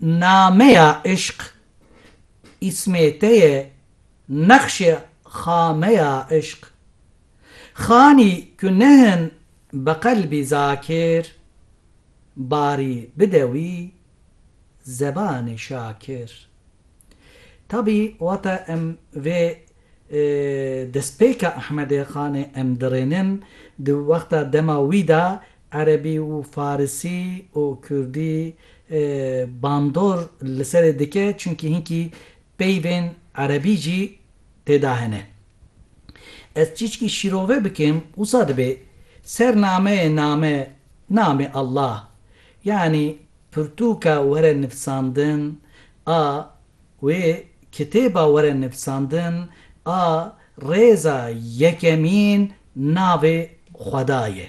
Nameya Îşq îsmê te ye Nexşê xameya îşq Xanî ku nehin bi qelbî zakir Barî bide wî zebanê şakir Tabî wate em vê destpêka Ehmedê Xanê em dirênin di wexta dema wî de Erebî û farisî û kurdî bandor li serê dike çunkî hinkî peyvên erebî jî têda hene. Ez çîçkî şîrove bikim wisa dibê ser nameyê name namê Allah yanî pirtûka were nivîsandin a wê kitêba were nivîsandin a rêza yekemîn navê xweda ye.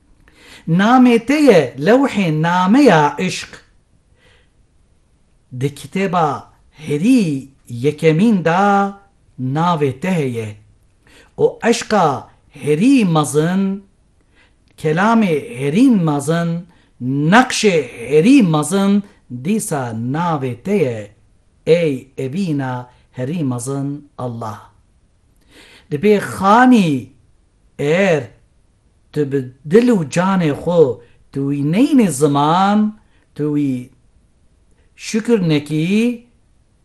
Namê te ye lewhê nameya îşq. Di kitêba herî yekemîn de navê te heye û eşqa herî mezin, kelamê herî mezin, neqşê herî mezin dîsa navê te ye ey evîna herî mezin Allah. Dibê xanî. Eger tu bi dil û canê xwe tu wî neyînî ziman, tu wî şikir nekî,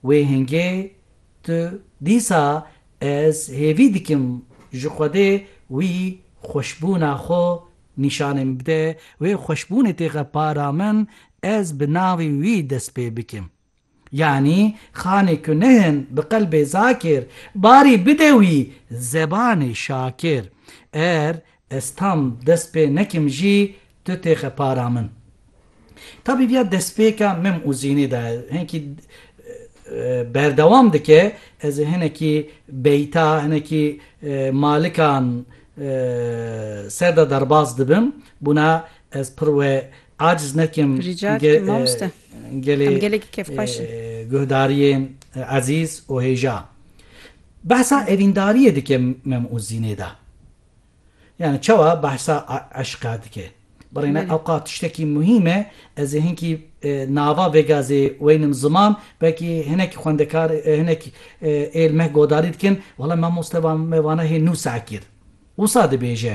wê hingê tu dîsa ez hêvî dikim ji Xwedê wî xweşbûna xwe nîşanê min bide, wê xweşbûnê têxe para min ez bi navê wî dest pê bikim. Yanî xanê ku nihin bi qelbê zakir, barî bide wî zebanê şakir. Er ez tam dest pê nekim jî tu têxe para min. Tabîbiya destpêka mim û zînê de hinkî berdewam dike, ez ê hinekî beyta, hinekî malikan ser de derbas dibim, bûna ez pir we Aciz nekim gelê guhdariyên ezîz û hêja. Behsa evîndariyê dike mem û zînê de. Yani çawa behsa eşqa dike. Birêne ewqat tiştekî muhîm e, ez ê hinkî nava vêga zê weynim ziman, belkî hinek xwendekar hinek ê li me godarî dikin, wala mamoste me vane hê nû saekîr. Wisa dibêje.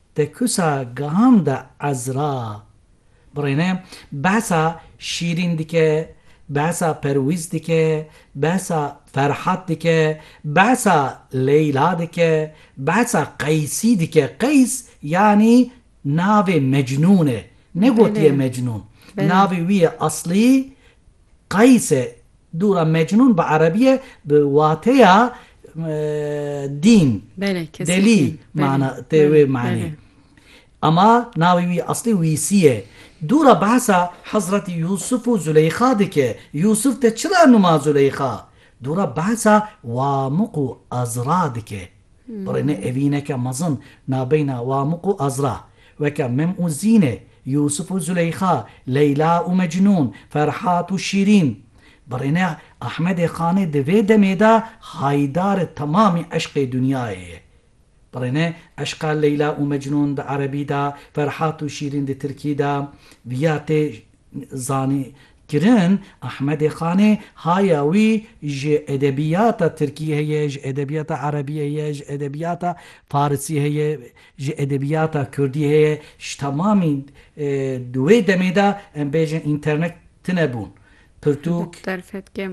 Di kusa Gam de Ezra birêne behsa Şîrîn dike, behsa Perwîz dike, behsa Ferhat dike, behsa Leyla dike, behsa Qeysî dike. Qeys yanî navê Mecnûn e. Negotiye Mecnûn. Navê wî yê eslî Qayis e, dûra mecnûn bi erebî ye bi wateya dîn, delî mana tê wê manê. Ama navê wî eslî Wîsî ye. Dûra behsa Hezretî Yûsif û Zûleyxa dike. Yûsif te çira nûma Zûleyxa? Dûra behsa Wamiq û Ezra dike. Birêne evîneke mezin nabeyna Wamik û Ezra, weke Mim û Zîne, Yûsif û Zûleyxa, Leyla û Mecnûn, Ferhat û Şîrîn. Birêne Ehmedê Xanê di vê demê de haydari temamî eşqê dinyayê ye. Birêne eşqa Leyla û Mecnûn di erebî de, Ferhat û Şîrîn di tirkî de, viya tê Zanînkirin, Ahmedê Xanê haya wî ji edebiyata tirkî heye, ji edebiyata erebî heye, ji edebiyata farisî heye, ji edebiyata kurdî heye, ji temamî di wê demê de em bêjin înternet tune bûn, pirtûk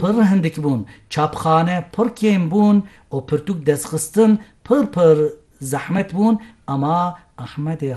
pir hindik bûn, çapxane pir kêm bûn û pirtûk destxistin pir pir zehmet bûn, ema Ahmedê